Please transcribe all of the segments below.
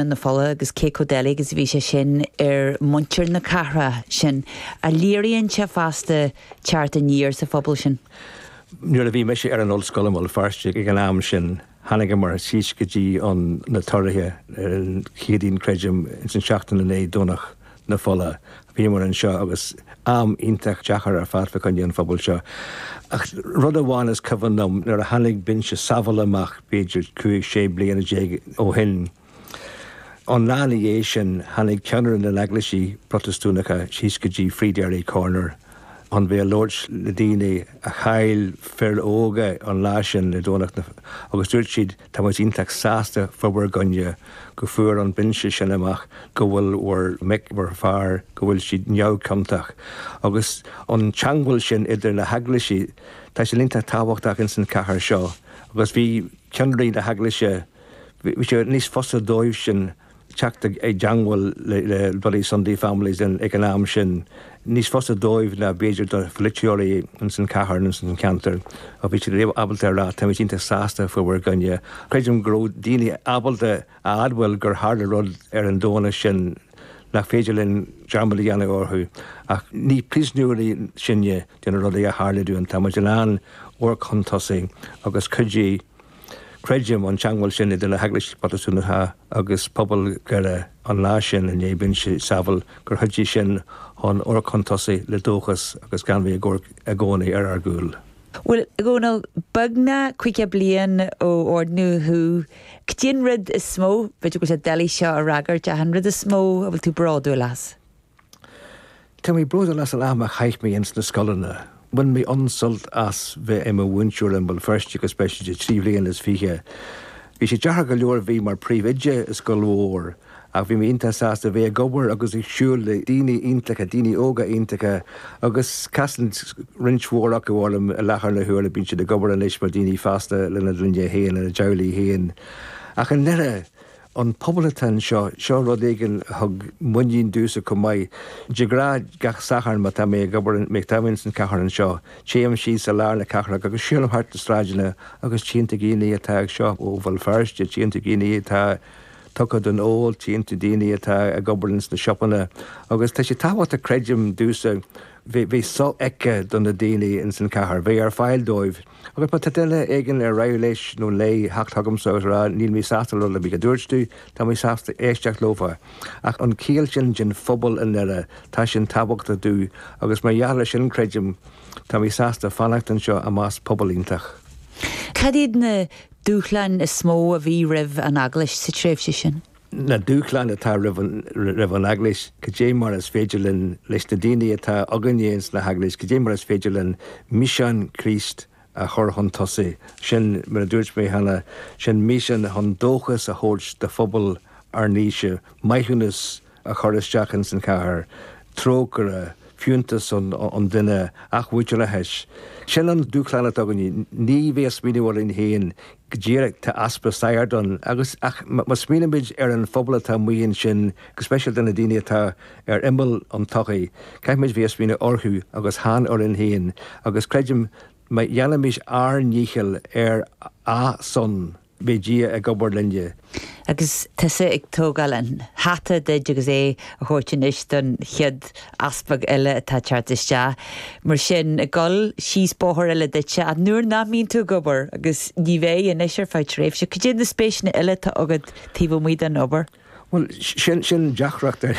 na Fola agus cé chomh doiligh is a bhí sé sin ar mhuintir na cathrach sin. Léiríonn sé fosta teacht aniar sa phobal sin. Nuair a bhí mise ar an ollscoil i mBéal Feirste ag an am sin, tháinigeamar síos go dtí an, na tórraimh ar an Chéadaoin, creidim, ins an seachtain i ndiaidh Domhnach na fola. Bhíomar anseo agus am iontach deachair ar fad fá choinne an phobail seo. Ach rud amháin is cuimhin liom, nuair a tháinig Binse Saville amach b'fhéidir cúig, sé bliana déag ó shin, an lá ina dhiaidh sin tháinig ceannairí na n-eaglaisí Protastúnacha síos go dtí Free Derry Corner chun bheith ag labhairt le daoine a chaill fir óga an lá sin le Domhnach na agus dúirt siad Tá muid iontach sásta fá bhur gcoinne go bhfuair an binse sin amach go bhfuil bhur mic, bhur fear, go bhfuil siad neamhchiontach. Agus an teangmháil sin idir na heaglaisí, tá sé iontach tábhachtach ins an chathair seo agus bhí ceannairí na heaglaise, bhí sé níos fusa dóibhsean, teacht i dteangmháil le Bloody Sunday Families ag an am sin, níos fusa dóibh ná b'fhéidir do pholaiteoirí ins an chathair nó ins an cheantar, ach bhí siad ábalta a rá, táimid iontach sásta fá bhur gcoinne. Creidim go raibh daoine ábalta a admháil gur tharla rud ar an Domhnach sin nach féidir linn dearmad a dhéanamh orthu, ach ní príosúnóirí sinne de na rudaí a tharla dúinn, táimid in ann amharc chun tosaigh agus cuidiú. Creidim an teangmháil sin idir na hEaglaisí Protastúnacha agus pobal Dhoire an lá sin i ndiaidh binse Saville, gur chuidigh sin chun amharc chun tosaigh le dóchas agus gan bheith ag amharc i gcónaí ar ár gcúl. Bhuel, a Dhónail, beagnach caoga bliain ó oirníodh thú, cad é an rud is mó, b'fhéidir go bhfuil sé doiligh seo a fhreagairt, ach an rud is mó a bhfuil tú bródúil as? Tá mé bródúil as an am a chaith mé ins na scoileanna. Bhain mé an-sult as bheith i mo mhúinteoir i mBéal Feirste go speisialta trí bhliana is fiche. Bhí sé deachair go leor bheith mar príomhoide i scoil mhór ach bhí mé iontach sásta bheith ag obair agus ag siúl le daoine iontacha, daoine óga iontacha agus casann roinnt mhór acu orm i láthair na huaire, bíonn siad ag obair anois mar dhaoine fásta lena gclann féin, lena dteaghlaigh féin. Ach i ndeireadh. An pobal atá anseo, seo rud éigin a thug muinín domhsa chomh maith. De ghnáth, gach Satharn má tá mé ag obair, má tá mé insan cathair anseo, téim síos i lár na cathrach agus siúlaim thart na sráideanna agus tchíonn tú daoine atá anseo ó Bhéal Feirste, tchíonn tú daoine atá tugtha don ól, tchíonn tú daoine atá ag obair ins na siopaí agus tá sé tábhachtach creidim domhsa bheith sofheicthe do na daoine insan cathair, bheith ar fáil dóibh. Agus más duine éigin ar mhaith leis nó léi theacht chugamsa agus a rá 'Níl mé sásta le rud ar bith a dúirt tú, tá mé sásta éisteacht leofa', ach an chiall sin den phobal i nDoire, tá sin tábhachtach domhsa, agus mar gheall air sin, creidim, tá mé sásta fanacht anseo i measc pobal iontach. Cad iad na dúshláin is mó a bhí roimh an Eaglais sa tréimhse sin? na dúshláin atá roimh an Eaglais, cad é mar is féidir linn, leis na daoine atá againne ins na hEaglaisí, cad é mar is féidir linn mísean Chríost a chur chun tosaigh. Sin, mar a dúirt mé cheana, sin mísean chun dóchas a thabhairt do phobal ár n-aoise, maithiúnas a chur isteach ins an chathair, trócaire, fiúntas an duine, athmhuintearas. Sin an dúshlán atá againne. Ní bheith ag smaoineamh orainn féin Go díreach, tá easpa sagart ann, agus, ach má smaoinímid ar an phobal atá amuigh ansin, go speisialta na daoine atá ar imeall an tsochaí, caithfimid bheith ag smaoineamh orthu agus chan orainn féin, agus creidim má dhéanaimid ár ndícheall ar a' son, beidh Dia ag obair linne. Agus tusa ag tógáil an hata díot agus é á thabhairt anois don chéad easpag eile atá ag teacht isteach, mar sin, ag dul síos bóthar eile duitse, ach nuair nach mbíonn tú ag obair, agus ní bheidh anois ar feadh tréimhse, cad iad na spéiseanna eile atá agat taobh amuigh den obair? Bhuel, sin, sin deacracht ar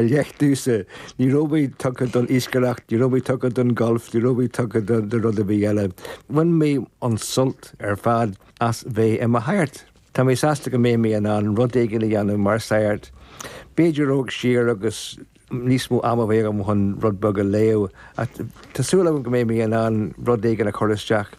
leith domhsa. Ní raibh mé tugtha don iascaireacht, ní raibh mé tugtha don ghalf, ní raibh mé tugtha do rud ar bith eile. Bhain mé an-sult ar fad. as bheith i mo shagart. Tá mé sásta go mbeidh mé in ann rud éigin a dhéanamh mar shagart. B'fhéidir dul siar agus níos mó ama a bheith agam chun rud beag a léamh, ach tá súil agam go mbeidh mé in ann rud éigin a chur isteach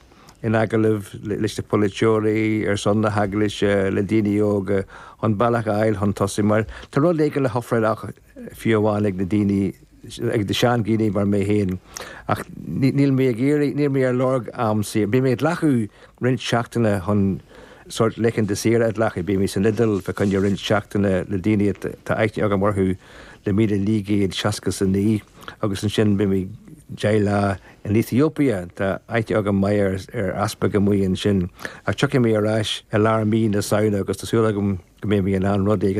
in agallamh leis na polaiteoirí, ar son na hEaglaise, le daoine óga, chun bealach a fháil chun tosaigh, mar tá rud éigin le hofráil acu. fiú amháin ag na daoine, ag na sean-dhaoine mar mé féin. Ach níl mé ag iarraidh, níl mé ar lorg am saor. Beidh mé ag glacadh roinnt seachtaine chun sórt laethanta saoire a ghlacadh. Beidh mé san Iodail fá choinne roinnt seachtaine le daoine atá aithne agam orthu le míle naoi gcéad seasca 's a naoi, agus ansin beidh mé deich lá in Ethiopia, tá aithne agam maith ar easpag amuigh ansin. Ach tiocfaidh mé ar ais i lár mí na Samhna agus tá súil agam go mbeidh mé in ann rud éigin